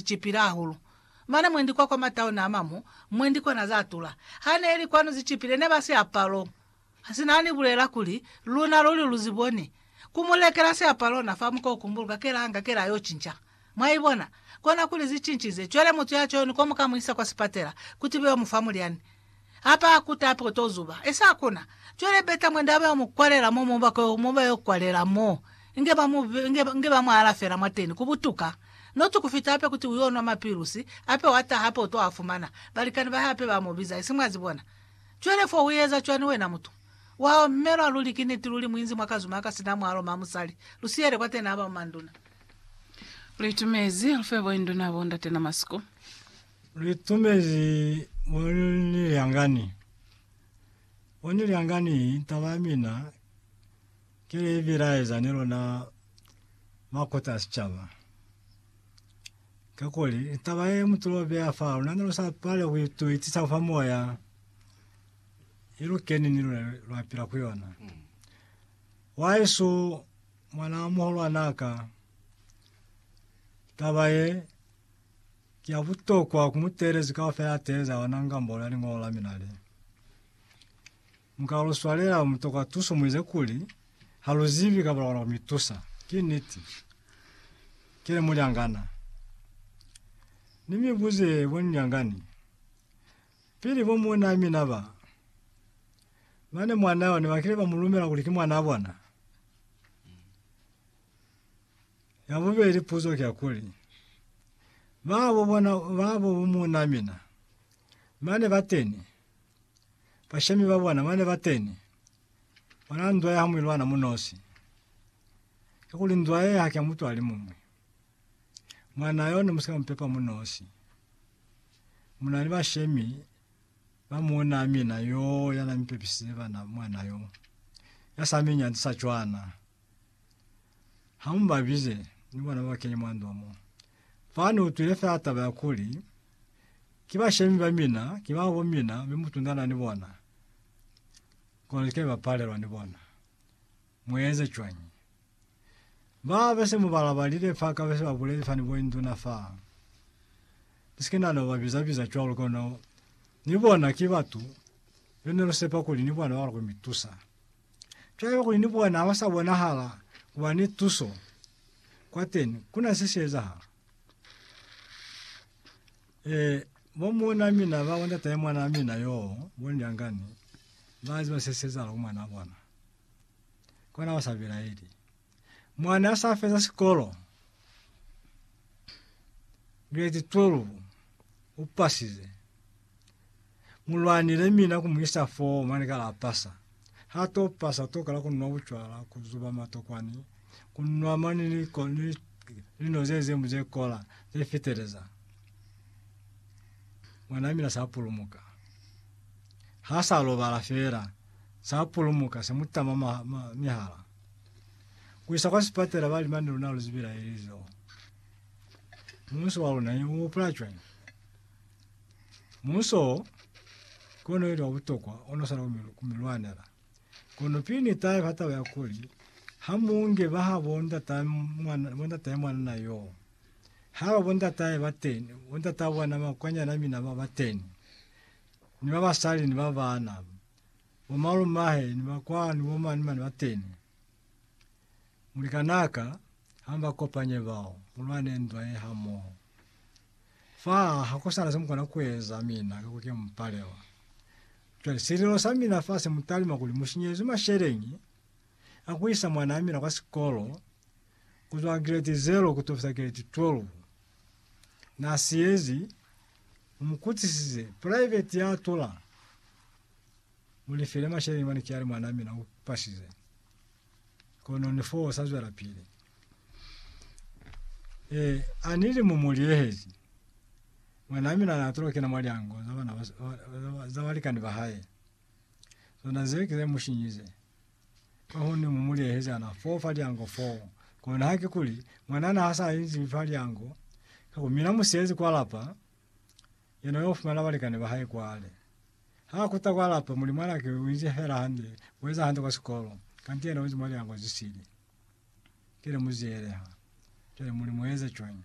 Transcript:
zicipile hahulu. Mane mwendi kwa kwa matauni a mamu, mwendi kwa na za tula. Ha ne li kwanu zicipile, ne ba si apalo. Si na ni bulela kuli, Luna luli lu zi boni. Ku mu lekela siapalo na fa muka u kumbuluka kela hanga kela yo cinca. Mwa ibona? Kona kuli zi cincize. Cwale mutu ya cwani ko mu ka mu isa kwa sipatela, kuti be yo mu fa mulyani. Ha ba kuta hape u to zuba. E sa kona. Cwale beta mwanda ba yo mu kwalela mo, mo ba ko, mo ba yo kwalela mo. Inge ba mu, inge, inge ba mu alafela mwateni, ku butuka. Not ku fita hape kuti u yo nwa mapilusi, hape wa taha hape u to a fumana. Balikani ba hae hape ba mu biza, isi mwa zibona. Cwale fo u eza cwani wena mutu? Wa omelwa luli, ki niti, luli muinzi mwa kazuma aka sina mwalo, ma musali. Lu siyele kwateni, haba mu manduna. Lu itumezi, lu fe bo induna, bo ndate na masiku. Litumezi mo ni lyangani. Mo ni lyangani, taba ya mina ki li bilaeza ni luna makota a sicaba. Kakuli taba ye mu tulo beya fa luna ne lu sa pale ku ituitisa fa moya, i lu keni ni luna lwa pila ku yona. Wahesu, mwanaa muhulwanaa ka, taba ye, Ki ya butokwa ku muteelezi kaufela ya teeleza ona ngambolo ya Liñolo la mina le, Mu ka lu swalela lu mutokwa tuso mu ize kuli, Ha lu zibi kapa lwa kona ku mi tusa. Ki niti. Ki ne mulyangana. Ni mi buze bonilyangani, Pili bo muunaa mina ba, ba ne mwanaa yo ne ba kile ba mu lumela kuli ki mwanaa bona? Ya bubeli puzo ki ya kuli, Babo bona babo bo muuna mina bane bateni, bashemi ba bona bane bateni, bona ndwa ya ha muilwana munosi? Ki kuli ndwa ye haki ya mutu alimuñwi. Mwana yo, nemusika mupepa munosi. Muna ni bashemi ba muuna mina yoo yana mipepisize bana mwana yo, ya sa mi nyanzisa cwana. Ha mu ba bize ni bona ba kene mwa ndwa mo. Fa ni utwile fela taba ya kuli, Ki bashemi ba mina, ki ba bo mina, mi mu tundana ni bona, kono ni ke ba palelwa ni bona. Mu eze cwañi? Ba be se mu ba labalile fa ka be se ba buleli fa ni bo induna fa. Ni si ke na no ba biza-biza cwalo, kono ni bona ki batu be ne lu sepa kuli ni bona ba lukwe mi tusa. Cwale kuli ni bona ha ba sa bonahala ku ba ni tuso kwateni, ku na se si ezahala. E, bo muuna mina ba bo ndatahe mwana wa mina yo, bo Ndyangani, ba ziba se si ezahala ku mwana wa bona. Kona ba sa bilaeli. Mwa n'a sa feza sikolo, grade 12, u pasize. Mu lwanile mina ku mu isa foo mwa ni kala a pasa. Ha t'o pasa, t'o kala ku nwa bucwala, ku zuba matokwani, ku nwa mwa ni li ko ni lino ze zimu ze kola, ze fiteleza. Mwan'a mina s'a pulumuka. Ha s'a lobala fela, s'a pulumuka, se mu tama ma, ma, mihala. ku isa kwa sipatela ba li mane luna lu zibila ili zo muhuso wa luna u hupula cwani muhuso kono ili wa butokwa ono sala ku mi lwanela kono pili ni tayo ha taba ya kuli ha munge ba ha bonda ta mwana bonda ta mwana na yo ha ba bonda tayo ba teni bonda ta bwana makwanya na mina ba ba teni ni ba basali ni ba bana Bomalumahe ni bakwanu bomane mane bateni. Mulikanaka hamba kopanye bao, mulwane ndwa ye hamoho. Fa hakusana semukona kueza mina ka kuke mupalewa. Cwale sililo samina fa semutalima kuli mushinyezwi masheleñi a kuisa mwanaa mina kwa sikolo kuzwa grade zero kutokisa grade 12. Naasiyezi, mumukutisise private yaatula. Mu ni file masheleñi mane cwale mwanaa mina u pasize. Kono ni foo sa zwelapili. Eh, a ni li mu mu liehezi. Mwanaa mina na atula ku kena mwa lyango za bana ba, za, za balikani ba hae. Zona zee ki ze mu shinyize. Kahone mu mu liehezi ana foo fa lyango foo. Kono haki kuli, mwanaa na ha sa inzi fa lyango, ka ku mina mu siyezi kwa lapa, yena u yo fumana balikani ba hae kwale. Ha kuta kwa lapa, muli mwanake u inzi fela hande, u eza hande kwa sikolo, kanti yena u inzi mwa liango ze sili. Ki lemuzieleha. Cwale muli mu eza cwañi?